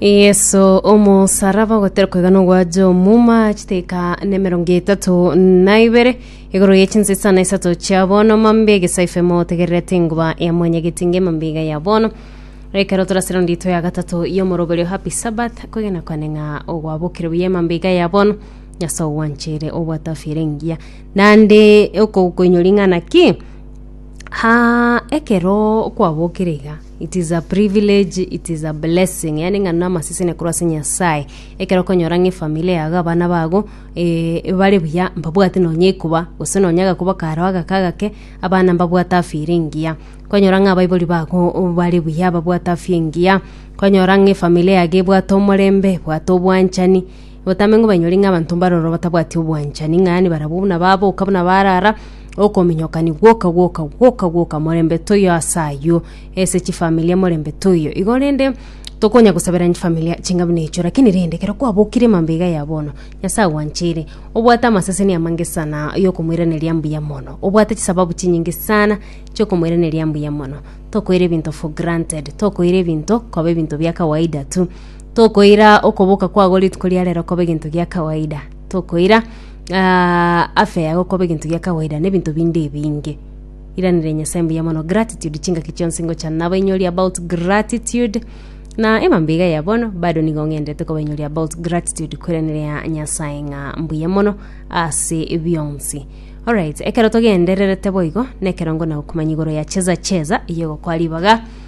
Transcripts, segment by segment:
Yeso omosaraba ogoterwa koiga nogwacha omuma chiteka na emerongo etato na ibere igoro ye chinsesa na isato chia bono mambe egesaife motegererete enguba ya mwanyageti nge mambe iga ya bono ekero torasero ndito ya gatato y'omoroberio happy sabbath kwegena kwane ng'a ogwabokire buya mambe iga ya bono nyaso ogwanchere obwate afya ere engiya nande okokoinyori ng'a naki ha ekero kwabokire iga It is a privilege, it is a blessing. Yani ng'a namasesenia korwa ase Nyasaye. Ekero okonyora ng'a efamily yago, abana bago, eh, bare buya, mbabwate nonya ekuba, gose nonya agakuba karo agake agake, abana mbabwate afya ere engiya. Kwanyora ng'a abaibori bago o- bare buya, babwate afya engiya, kwanyora ng'a efamily yago ebwate omorembe, ebwate obwanchani, Botambe ng'a banyore ng'a abanto mbaroro batabwati obwanchani, ng'a yaani barabwo buna baboka buna barara, okominyokani gwoka gwoka gwoka gwoka morembe toiyo ase ayio, ase chifamilia morembe toiyo igo rende, tokonya gosaberania chifamilia ching'a buna echio rakini rende ekero kwabokire mambia iga ya bono, Nyasae agwancheire, obwate amaseseni amange sana yokomoiraneria mbuya mono, obwate chisababu chinyinge sana chiokomoiraneria mbuya mono, tokoira ebinto for granted, tokoira ebinto koba ebinto bia kawaida tu. Tokoira okoboka kwao rituko ria rero kobe gento gia kawaida. Tokoira ah, afya yago kobe gento gia kawaida na ebinto binde ebinge. Iranera Nyasae mbuya mono gratitude chingaki chionsi ngochana nabainyori about gratitude na emambe iga ya bono bado nigo ng'endete kobainyori about gratitude koiraneria Nyasae ng'a mbuya mono ase bionsi. Alright, ekero togendererete boigo, nekero ngona gokumanya igoro ya cheza cheza, eyogokwa ribaga,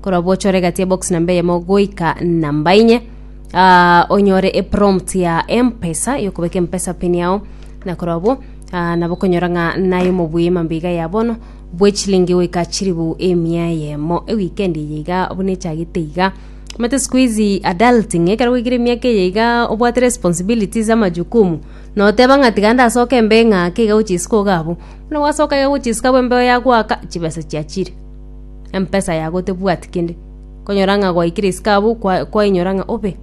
korwa bwochore egati ebox namba eyemo goika namba inye Ah, onyore eprompt ya empesa yokobeka empesa pin yao na korwa obwo ah, nabo okonyora ng'a naye omobuya emambiga ya bono bwechilingi goika chiribu emia eyemo ewikend eye iga buna echagete iga omate siku hizi adulting ekero goikire emiaka eye iga obwate responsibilities amajukumu noteba ng'a tiga ndasoke embe ng'ake iga gochisika oga abwo buna gwasoka iga gochisika abwo embe yagoaka chibesa chiachire Empesa yago tebwati kende, konyora ng'a gwaikire isiko abwo kwa- kwainyora ng'a obe,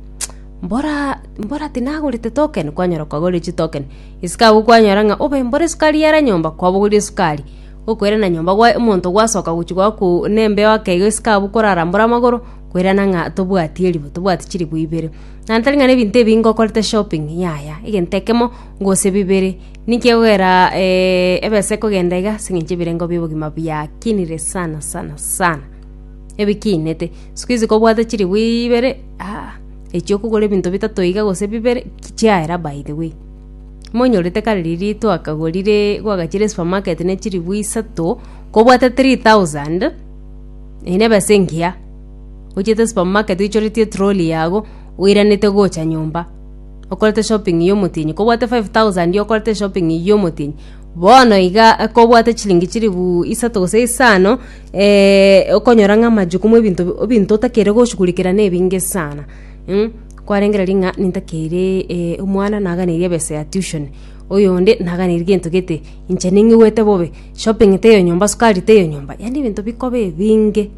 mbora mbora tinagorete token, kwanyora kwagorire chitoken. Isiko abwo kwanyora ng'a obe mbore esukari yara nyomba, kwabogoria esukari, okoirana nyomba gwae omonto gwasoka gochia goakuu na embeo ake iga isiko abwo korarambore amagoro, koirana ng'a tobwati eribuyu tobwati chiribuyu ibere. Naende tari ng'a na ebinto ebi ngokorete shopping, yaya, egento ekemo, gose bibere. Ninki egokera eh, ebesa ekogenda iga ase eng'encho ebirengo bi'obogima biakinire sana sana sana ebikinete sikuizi kobwate chilifu ibere aa echi okogora ebinto bitato iga gose bibere ki- chiaera by the way monyorete kare riria twakagorire gwagachire esupermarket ne chilifu isato kobwate 3000 eye nebesa engiya ochiete esupermarket oichoretie etroli yago oiranete gocha nyomba. okorete shopping yomotienyi, kobwate 5000 okorete shopping yomotienyi bono iga kobwate chilingi chiri bu isato gose isano eh, okonyora ng'a amajukumu ebinto bi- ebinto otakeire goshughulikera nebinge sana mh, kwarengereria ng'a nintakeire eh, omwana naganeirie ebesa ya tution, oyonde naganeirie gento gete, inche ning'iwete bobe, shopping teiyo nyomba, sukari teiyo nyomba, yaani ebinto bikoba ebinge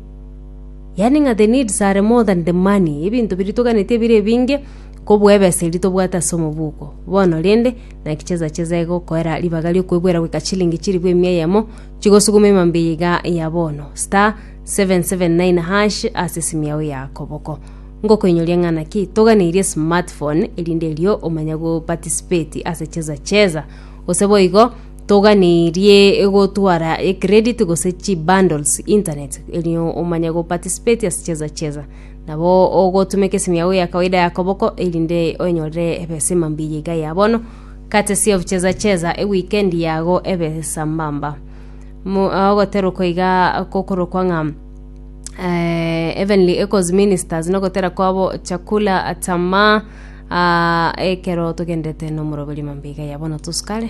yaani ng'a the needs are more than the money ebinto biria toganetie bire ebinge. Kobua ebesa eria tobwate ase omobuko bono rende, naki chesa chesa egokoera ribaga riokwegwera goika chilingi chilifu emia eyemo, chigosuguma emambia eye iga ya bono, *779# ase esimu yao ya koboko. Ngokoinyoria ng'a naki toganeirie smartphone erinde erio omanye go participate ase chesa chesa. Gose boigo toganeirie gotwara ecredit gose chibundles internet erio omanye go participate ase chesa chesa. Nabo ogotuma ekesimi yago gia kawaida ya koboko, erinde onyorere ebesa emambia yaiga ya bono, courtesy of Cheza Cheza, ewikendi yago ebe sambamba. Mu- ah, ogotera okoiga kokorokwa ng'a eh, Heavenly Echoes Ministers nogotera kwabo chakula atama ah, ekero togendete nomoroberio mambia iga ya bono tosukare